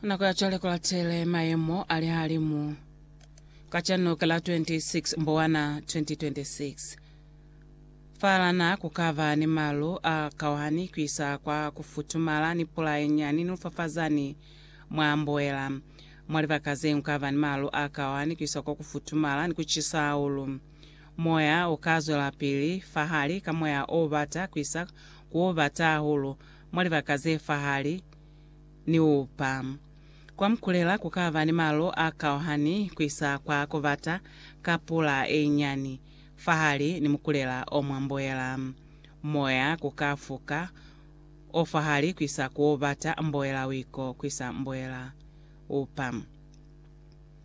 nako ya cwale kulatele mayemo a lihalimu kacano ka la 26 mbowana 2026 falana kukaba ni malu a kauhani kuisa kwa kufutumala ni pula yenyani ni lufafazani mwa mboela mwa libaka ze kukaba ni malu a kauhani kuisa kwa kufutumala ni kucisa hahulu moya ukazwelapili fahali ka moya o bata kuisa ku bata hahulu Mwa libaka ze fahali ni upa kwa mukulela ku ka ba ni malu a kauhani ku isa kwa ku bata ka pula e nyani fahali ni mukulela o mwa mboela. Moya ku ka fuka o fahali ku isa ku o bata mboela wiko ku isa mboela upa.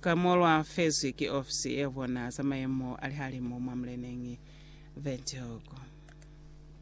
Ka mo lwa fezwi ki ofisi ye bona za mayemo a lihalimu mwa muleneñi Windhoek.